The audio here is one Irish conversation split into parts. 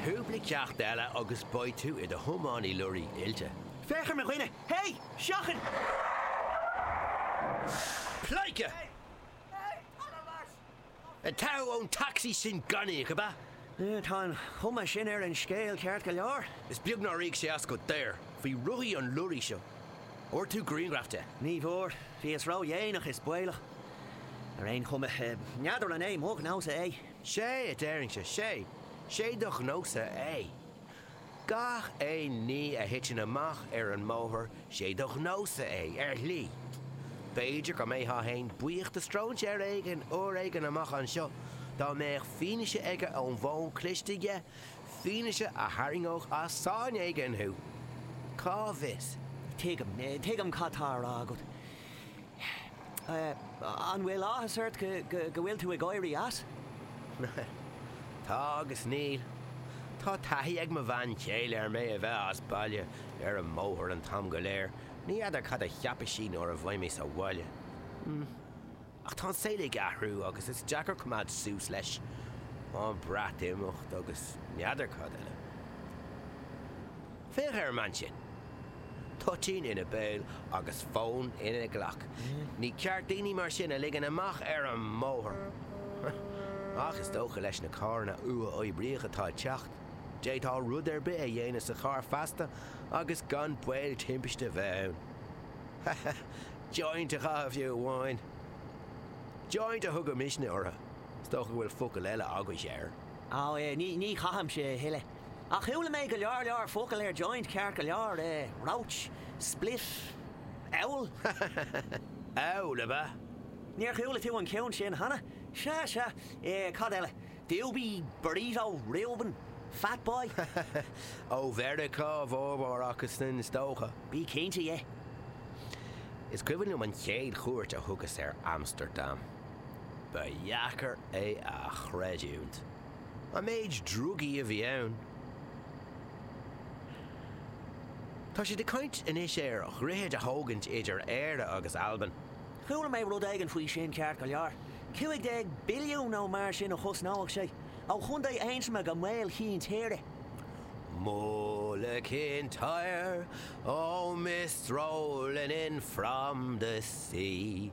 Cúpla ceacht eile agus beidh tú i do thiománaí leoraí oilte. Féach ar mo dhuine! Hé! Seachain! Pleidhce! Ag teitheadh ón tacsaí sin gan íoc, ab ea? Tá an chuma sin ar an scéal ceart go leor. Is beag nár íoc sé as go daor faoi rothaí an leoraí seo. An bhfuair tú grianghraf de? Ní bhfuair. Bhíos ródhéanach is baolach. Ar aon chuma, n'fheadar an é mo ghnó-sa é. 'Sé a deirinnse, 'sé, 'sé do ghnó-sa é. Gach aon ní a thiteann amach ar an mbóthar 'sé do ghnó-sa é, ar shlí. B'fhéidir go mbeifeá fhéin buíoch de stróinséir éigin uair éigin amach anseo dá mbeadh fianaise aige ón bhfón cliste aige, fianaise a tharraingeodh as sáinn éigin thú. Cá bhfios? Tuigim, tuigim cad tá á rá agat. An bhfuil áthas ort go bhfuil tú ag éirí as? Tá agus níl. Tá taithí ag mo bhean chéile ar mé a bheith as baile ar an mbóthar an t-am go léir, ní fheadar cad a cheapfaidh sí nuair a bheidh mé sa bhaile. Ach tá an saol ag athrú agus is deacair coimeád suas leis. An Breatimeacht agus n'fheadar cad eile. Féach ar an mbean sin. Toitín ina béal agus fón ina glac. Ní ceart daoine mar sin a ligean amach ar an mbóthar. Ach is dócha leis na carranna uathoibríoch atá ag teacht, d'fhéadfá rud ar bith a dhéanamh sa charr feasta agus gan baol timpiste a bheith ann. Joint a chaitheamh fiú amháin. Joint a thugaimidne orthu. Is dócha go bhfuil focal eile agaibhse air. Á, ní chaithimse é a thuilleadh. Ach chuala mé go leor focal ar joint ceart go leor, roach, spliff, owl. Owl, ab ea? Níor chuala tú an ceann sin cheana? Sea, sea, cad eile? Doobie, burrito, Reuben, fat boy. Ó Mheiriceá a bhformhór acu sin, is dócha. Bí cinnte dhe. Is cuimhin liom an chéad chuairt a thugas ar Amstardam. Ba dheacair é a chreidiúint. An méid drugaí a bhí ann. Tá siad ag caint anois ar dhroichead a thógaint idir Éire agus Albain. Chuala mé rud éigin faoi sin ceart go leor. 15 billiún nó mar sin a chosnódh sé, ó chontae Aontroma go Maol Chinn Tíre. Mull of Kintyre, oh, mist rolling in from the sea.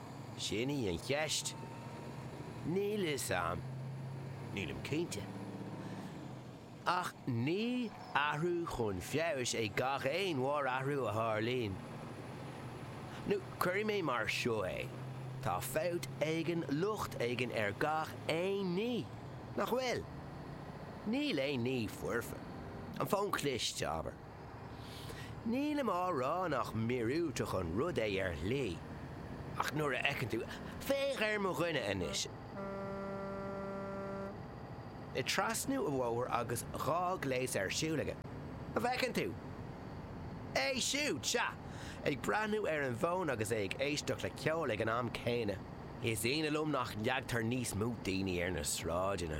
Sin í an cheist. Níl fhios a'm. Nílim cinnte. Ach ní athrú chun feabhais é gach aon mhórathrú a tharlaíonn. Nó cuirfidh mé mar seo é, tá fabht éigin, locht éigin ar gach aon ní, nach bhfuil? Níl aon ní foirfe. An fón cliste, abair. Nílim á rá nach míorúilteach an rud é ar shlí, ach nuair a fheiceann tú, Féach ar mo dhuine anois! ag trasnú an bhóthair agus dhá ghléas ar siúl aige, an bhfeiceann tú é siúd, sea, ag breathnú ar an bhfón agus é ag éisteacht le ceol ag an am céanna. Is ionadh liom nach leagtar níos mó daoine ar na sráideanna.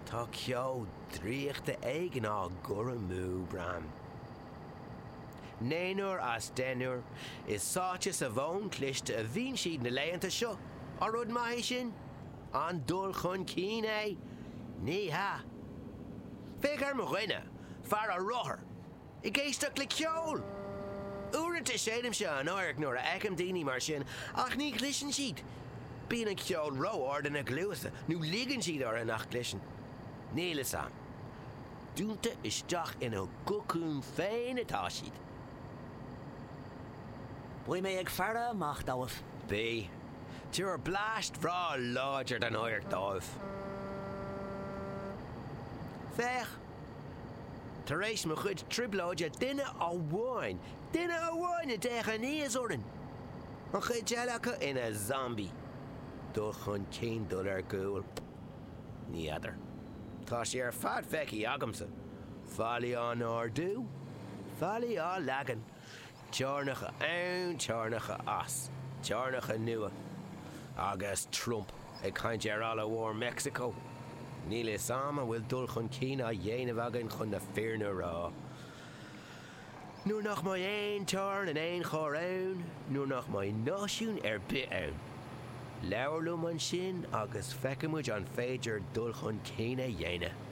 Tá ceo. draíochta éigin á gcur amú, braithim. Naonúr as deichniúr, is sáite sa bhfón cliste a bhíonn siad na laethanta seo. An rud maith é sin? An dul chun cinn é? Ní hea. Féach ar mo dhuine, fear ar rothar! Ag éisteacht le ceol! Uaireanta séidimse an adharc nuair a fheicim daoine mar sin ach ní chloiseann siad. Bíonn an ceol ró-ard ina gcluasa nó ligeann siad orthu nach gcloiseann. Níl fhios a'm. Dúnta isteach ina gcocún féin atá siad. Beidh mé ag faire amach dóibh. Bí. Tabhair bleaist bhreá láidir den adharc dóibh. Féach! Tar éis mo chuid trioblóide duine amháin, duine amháin a d'fhéach aníos orainn! An chuid eile acu ina zombaithe. Dul chun cinn, dul ar gcúl? Ní fheadar. Tá sé ar fad feicthe agamsa. Fallaí á n-ardú. Fallaí á leagan. Teorainneacha ann, teorainneacha as, teorainneacha nua. Agus Trump ag caint ar fhalla mór Mheicsiceo, níl 'fhios 'am an bhfuil dul chun cinn á dhéanamh againn chun na fírinne a rá. Nuair nach mbeidh aon teorainn in aon chor ann, nuair nach mbeidh náisiún ar bith ann, labhair liom ansin agus feicfidh muid an féidir dul chun cinn a dhéanamh.